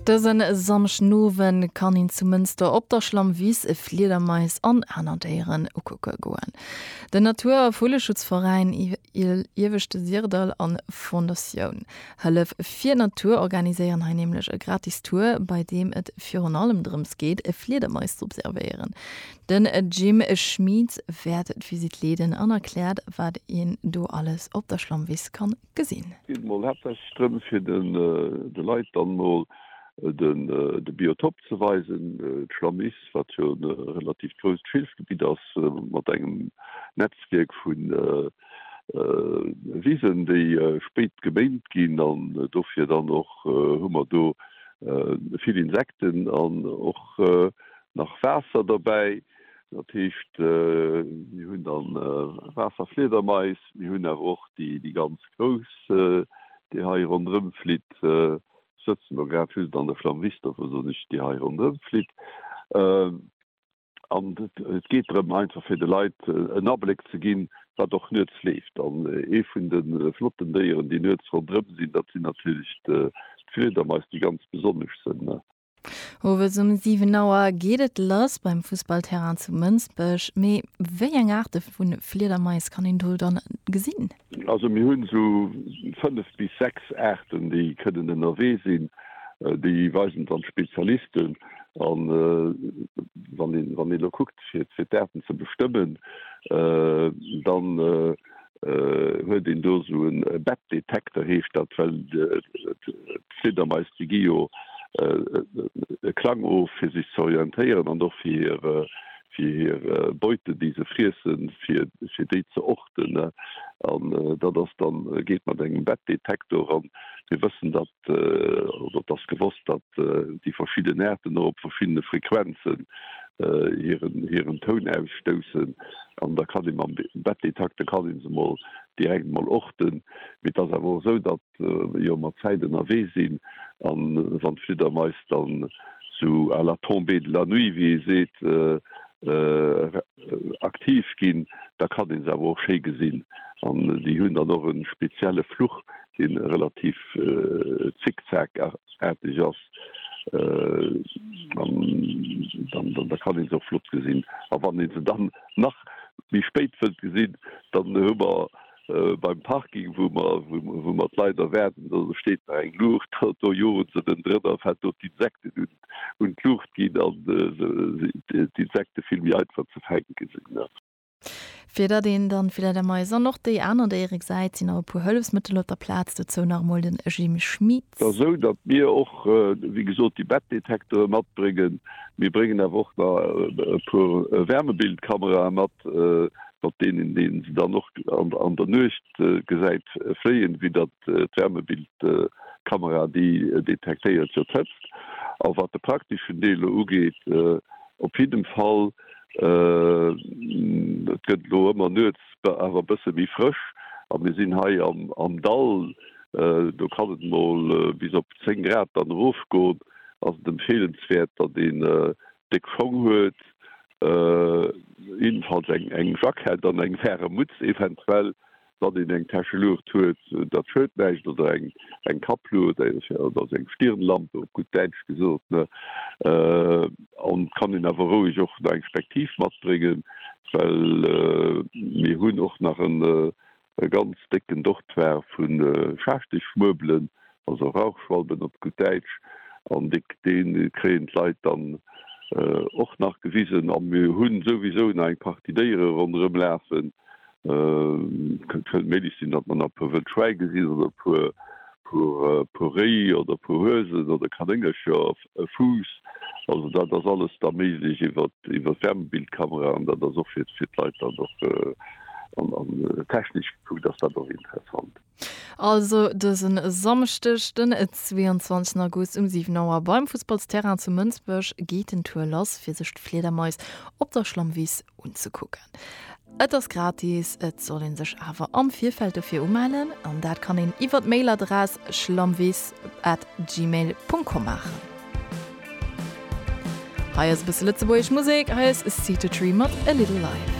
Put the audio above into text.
Dësen Samschdenowen kann een zu Mënster op der Schlammwiss Fliedermais an aner Déieren ukucke goen. Den Natur a Vulleschutzveräin Ieweschte Sirdall an Fondatioun Hëllef fir Natur organiséieren hei nämlech e gratis Tour, bei deem et virun allem drëms geet Fliedermais z'observéieren. Den Jim Schmit wäert d'Visitt leeden an erkläert wat een do alles op der Schlammwiss kann gesinn. Et geet emol haaptsächlech drëm, fir de Leit dann emol de Biotop ze weisen, d'Schlammiss, wat jo e relativ grousst Schilfgebitt ass, mat engem Netzwierk vu Wisen, déi spéit geméint ginn. An dofir dann och hu mer do vill Insekten an och nach Waasser derbäi. Dat heescht, mir hunn da Waasserfliedermais, mir hunn awer och déi ganz grouss, déi hei ronderëm flitt. Ech sëtzen elo grad just an der Flammrichter, wou soss ech, déi hei ronderëm flitt. An et geet drëm, einfach fir de Leit en Abléck ze ginn, wat och nuets leeft. An ee vun de flotten Déieren, déi nuets ronderëm sinn, dat sinn natierlech d'Fliedermais, déi ganz besonnesch sinn. Owes um 7 Auer geet et lass beim Fussballterrain zu Mënsbech. Mee wéi eng Aarte vu Fliedermais kann een do dann gesinn? Also mir hunn esou 5 bis 6 Aarten déi kënnen ënnerwee sinn. Déi weisen dann d'Spezialisten an wann een elo kuckt fir d'Aarten ze bestëmmen dann. huet een do esou e Bettdetekter, heescht dat, well d'Fliedermais déi gi jo e Klang of, fir sech ze orientéieren an och fir hir Beute, déi se friessen, fir déi ze orten. An dat ass dann, geet mat engem Bettdetektor an mir wëssen, datt oder et ass gewosst, datt déi verschidden Aarten och op verschiddene Frequenzen hiren Toun ausstoussen. An da kann ee mam Bettdetekter kann ee se mol direkt mol orten. Mee et ass awer och esou, datt jo mer d'Zäit ënnerwee sinn a wann d'Fliddermais dann sou à la tombée de la nuit, wéi ee seet, aktiv ginn, da kann een se awer och schéi gesinn an déi hunn dann och e spezielle Fluch, dee relativ zickzack-aarteg ass an da kann ee se och flott gesinn. A wann ee se dann nach méi spéit wëllt gesinn, dann hu mer beim Parking, wou mer wou mer d'Leit erwaarden, do steet nach eng Luucht, do joen se dann drënner, fält do d'Insekten un. un d'Luucht ginn an d'Insekte vill méi einfach ze fänke sinn. Fir datt een dann vläit am Mais an och déi aner Déiere gesäit, sinn nach e puer Hëllefsmëttel op der Plaz. Dozou nach emol den Jim Schmit. Ass esou, datt mir och wéi gesot déi Bettdetektore matbréngen. Mir bréngen awer och nach e puer Wärmebildkamerae mat, mat deenen een se dann och an der Nuecht gesäit fléien, wéi datt d'Wärmebildkamera, déi detektéiert jo d'Hëtzt. A wat de prakteschen Deel elo ugeet, op jiddem Fall, et gëtt elo ëmmer nuets awer e bësse méi frësch a mir sinn hei am Dall, do kann et mol bis op 10 Grad dann erofgoen, ass et empfeelenswäert, datt een déck Schong huet, jiddefalls eng Jackett an eng waarem Mutz eventuell, Datt een eng Täsche Luucht huet, dat schued näischt, oder eng Kappluucht, oder seng Stirnlampe op gutt Däitsch gesot, ne? An et kann een awer roueg och nach eng Spektiv matbréngen, well mir hunn och nach e ganz décken Dortoir vu Schaarschtechmuerbelen, also Rauchschwalben op gutt Däitsch, an dee kréien d'Leit dann och nach gewisen. A mir hu souwisou nach eng Partie Déiere ronderëm lafen. Et kënnt méi licht sinn, datt mer nach e puer wëll Schwäi gesinn oder e puer Réi oder e puer Huesen oder Kanéngercher, e Fuuss. Also dat ass alles da méiglech iwwer d'Wärmebildkamera an dat ass och fir d'Leit dann och, an technesch gekuckt ass dat och interessant. Also dësen Samschdeg den 22 August um 7 Auer beim Fussballsterrain zu Mënsbech geet den Tour lass fir sech d'Fliedermais op der Schlammwiss unzekucken. Et ass gratis, et soll een sech awer am Virfeld dofir umellen an dat kann een iwwer d'Mailadress schlammwiss at gmail Punkt com maachen. Hei ass e bësse lëtzebuergesch Musek, hei ass Seed To Tree mat A Little Life.